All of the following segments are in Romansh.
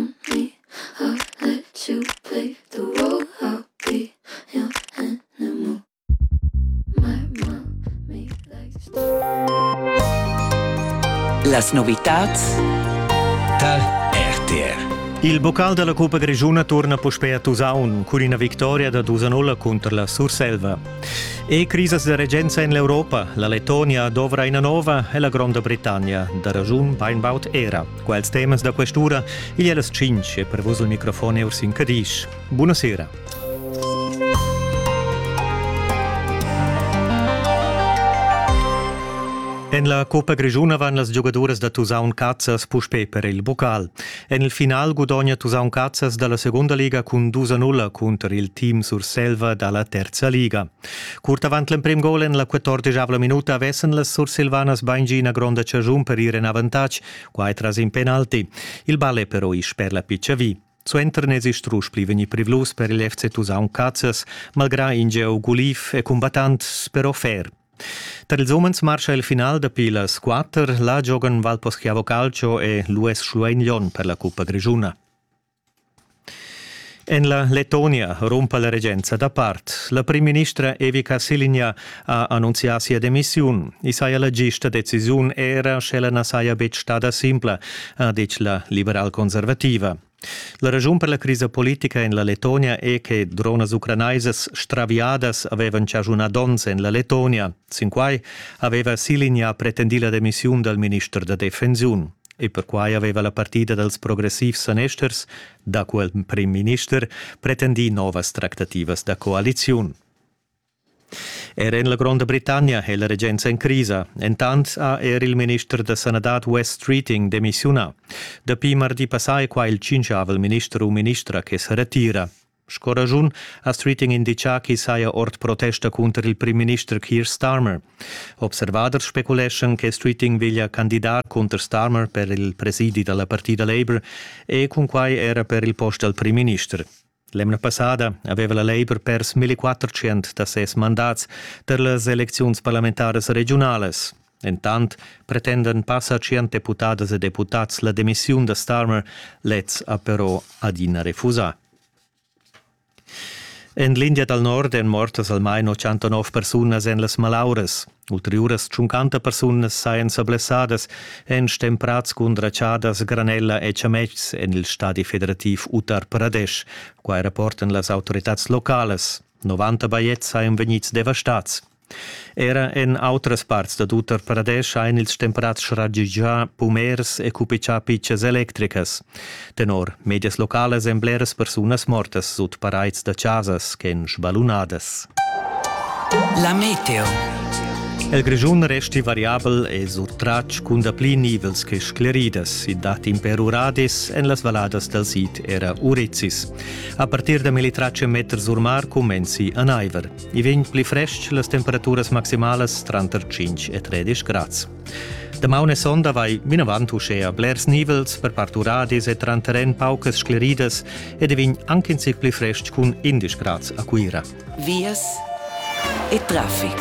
happy, I'll let you play the role I'll be your animal. My mom me likes to Las novitats tar RTR. Il bocal della Cuppa Grigiuna torna puspei a Tusaun cun ina victoria da dus a nulla cunter la Surselva. E crisas de regenza en l'Europa, la Letonia dovra ina nova e la Gronda Britannia, da ragiun beinbaut era. Quels temas da quest'ura igl è las 5 e per vus il microfon è Ursin Cadisch. Buonasera. En la Coppa Grischuna van las giogaduras da Tusaun Cazzas puspè per il bocal. En il final gudogna Tusaun Cazzas da la segunda liga cun 2-0 cunter il team Surselva da la terza liga. Curt avant l'emprim gol en la quattordeschavla minuta vessen las sursilvanas baingi ina gronda chaschun per ir en avantatg, quai tras in penalti. Il ball è però ì sper la piccia vi. Suenter n'esi strusch pli vegnì privlus per il FC Tusaun Cazzas, malgrà in gieu guliv e cumbattant però fer. Tar ils umens marscha il final dapi las 4. Là giogan Valposchiavo Calcio e l'US Schluein Lyon per la cuppa grischuna. En la Lettonia rumpa la regenza dapart. La primministra Evica Silinja ha annunzià sia demissiun. I saja la gista decisiun era, sch'ella na saja betg stada simpla, ha ditg la liberal-conservativa. La raschun per la crisa politica en la Lettonia è che dronas ucranaisas straviadas avevan chaschunà donns en la Lettonia. Sin quai aveva Silinja pretendì la demissiun dal minister da defensiun. e perquai aveva la partida dals progressivs sanesters, daco il prim minister, pretendì novas tractativas da coaliziun. Er en la Gronda Britannia è la regenza en crisa. Entant ha er il minister da sanadad Wes Treating demissiunà. Dapi mardi passà è qua il tschinchavel minister u ministra che sa retira. Sco raschun ha Streeting inditgà ch'i saja ord protesta cunter il primminister Keir Starmer. Observaders speculeschan che Streeting veglia candidar cunter Starmer per il presidi da la partida Labour e cunquai era per il post dal primminister. L'emna passada aveva la Labour pers 1400 da ses mandats per las elecziuns parlamentaras regiunalas. Entant pretendan passa tschient deputadas e deputads la demissiun da Starmer, lez ha però adina refusà. En l'India dal Nord èn mortas almain 89 persunas en las malauras. Ulteriuras 50 persunas sajan sa blessadas, èn stemprads cun dratschadas granella e chametgs en il stadi federativ Uttar Pradesh. Quai rapportan las autoritads localas. 90 bajetgs sajan vegnids devastads. Era en autras parts dad Uttar Pradesh ein ils temperats schagigià pumers e cupichà pitschas electricas. Tenor medias localas ein bleras persunas mortas sut paraids da chasas ch'ein sbalunadas. La meteo. El Grischun resti variabel e surtratg cun dapli nivels che scleridas. I dat imper uradis en las valladas dal sid era Urizis. A partir da 1300 meter sur mar cumenzi a naiver. I vegn pli frestg las temperaturas maximalas tranter 5 e 13 grads. Damaun e sonda vai vinavant uschea blers nivels per part uradis e tranter en paucas scleridas ed i vegn anche in zic pli frestg cun 11 grads a Cuira. Vias e traffic.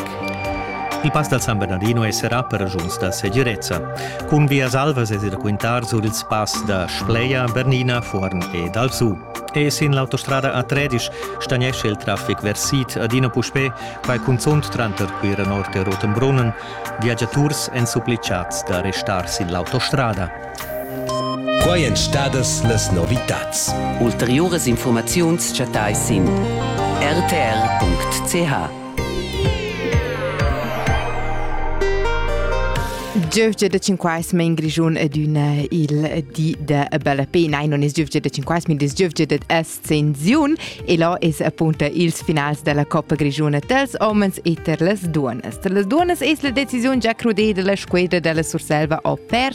Il pass dal San Bernardino esserà per ragiuns da segirezza. Cun vias alvas es da quintar sur ils pass da Spleia, Bernina, Fuorn ed Alsù. E sin l'autostrada a Tredisch stagnescha il traffic vers sid adina puspè, quai cunzunt tranter Cuira Nord e Rotenbrunnen. Viagiaturs èn supplitgads da restar sin l'autostrada. Quai èn stadas las novitads. Ulteriuras informaziuns chattais sin rtr.ch. Giövgia da Cinquais men Grischun adüna il di da bella pena. Non es giövgia da Cinquais, min es giövgia da Ascensiun e là es appunto ils finals della Coppa Grischuna dels homens e ter las duonas. Ter las duonas es la decisiun già crudeda la squadra della Surselva o per